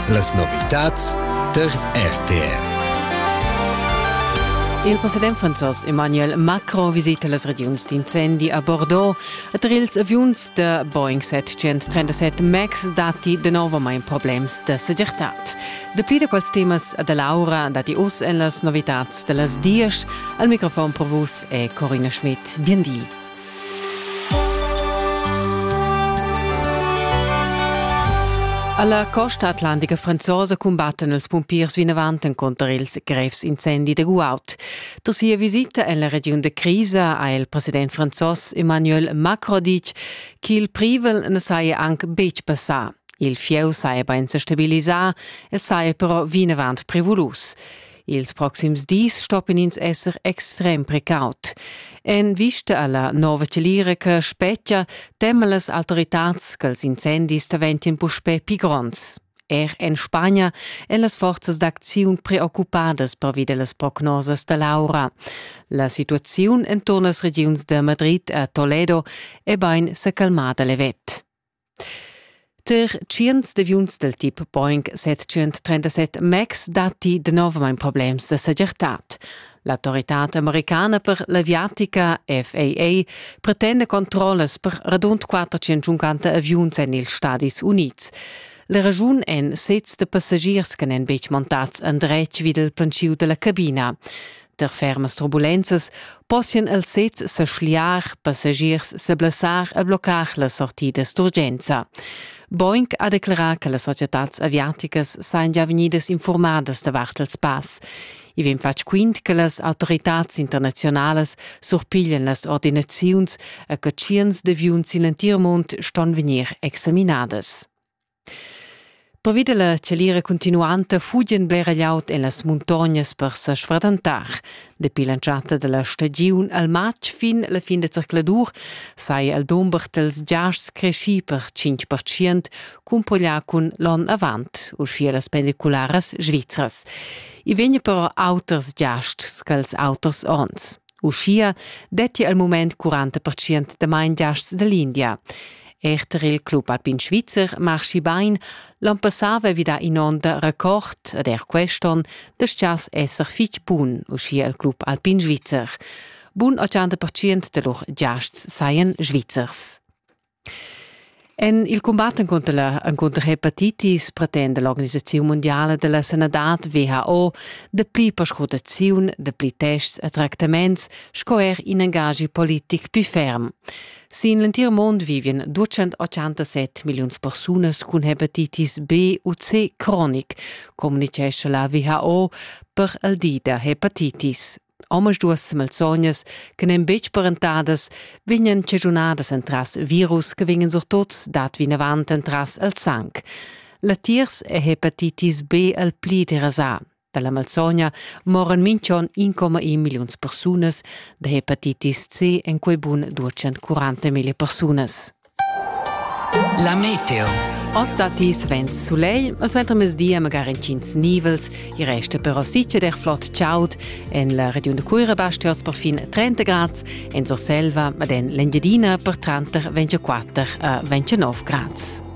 Las novitads der RTR. Il president franzos Emmanuel Macron visita las regiuns d'incendi a Bordeaux ed er ils aviuns da Boeing 737 MAX datti danovamain problems da segirtad. Dapli da quels temas da Laura datti oz en las novitads da las dies. Al microfon per vus è Corina Schmidt. Bien di. Alla costa atlantica franzosa cumbattan els pumpiers vinavant encunter ils grevs incendi de Guaut. Tra sia visita en la regiun de Crisa ha il president franzos Emmanuel Macron ditg ch'il privel ne saja anc betg passà. Il fieu saja bein se stabilisà, el saja però vinavant prevulus. Ils proxims dis stoppin ins esser extrem precaut. En vista alla nova celira che spetgia, teman las autoritads ch'ils incendis daventien puspè pli gronds. Er en Spagna èn las forzas d'acziun preoccupadas pervi las prognosas da l'aura. La situaziun enturn las regiuns de Madrid a Toledo è bain sa calmada levet. Ter tschients deviuns dal tip Boeing 737 MAX datti danovamain problems da segirtad. L'autoritad americana per l'aviatica FAA pretenda controllas per radund 450 aviuns en ils Stadis Unids. La raschun èn sezs da passagiers che n'èn betg montads endretg vid il plantschiu da la cabina. Per fermas turbulenzas possian els sezs sa schliar, passagiers sa blessar e bloccar la sortidas d'urgenza. Boeing ha declerà che las societads aviaticas sajan già vegnidas informadas davart ils pass. I vegn fatg quint che las autoritads internaziunalas surpiglian las ordinaziuns e che tschients d'aviuns sin l'entir mund ston vegnir examinadas. Pervi dalla chalira cuntinuanta fugien blera glieud en las muntognas per sa sfradantar. Dapi l'entschatta dalla stagiun al matg fin la fin da zercladur sai el dumber dels giasts cresci per 5% cumpoglià cun l'onn avant, uschia las pendicularas svizras. I vegna però auters giasts ch'els auters onns. Uschia detti al mument 40% da main giasts da l'India. Er tar il club alpin svizzer marschi bain, l'onn passà vevida in onn da record ed er quest'onn dastgias esser fitg bun, uschia il club alpin svizzer. Bun 80% da lur giasts sajan svizzers. En il combat encunter la hepatitis pretenda l'organisaziun mondiale della sanadad WHO dapli perscrutaziun, dapli tests e tractaments sco er in engagi politic più ferm. Sin l'entir mond vivian 287 milliuns persunas cun hepatitis B u C cronic, communicescha la WHO per il di da hepatitis. Omas duas malsognas che n'en betg parentadas vegnan cegiunadas entras virus che vegnan surtut dat vinavant entras il sang. Latiers è hepatitis B il pli derasà. Dalla malsogna moran minchon 1,1 milliuns persunas da hepatitis C en quei bun 240.000 persunas. La meteo. Oz dati Svens Soleil, al suenter mezdia magari incins nivels, i resta però sice der flott ciaut, en la regiun de Cuira basti oz per fin 30 grad, en Surselva, ma en l'Engiadina per tranter 24 a 29 grad.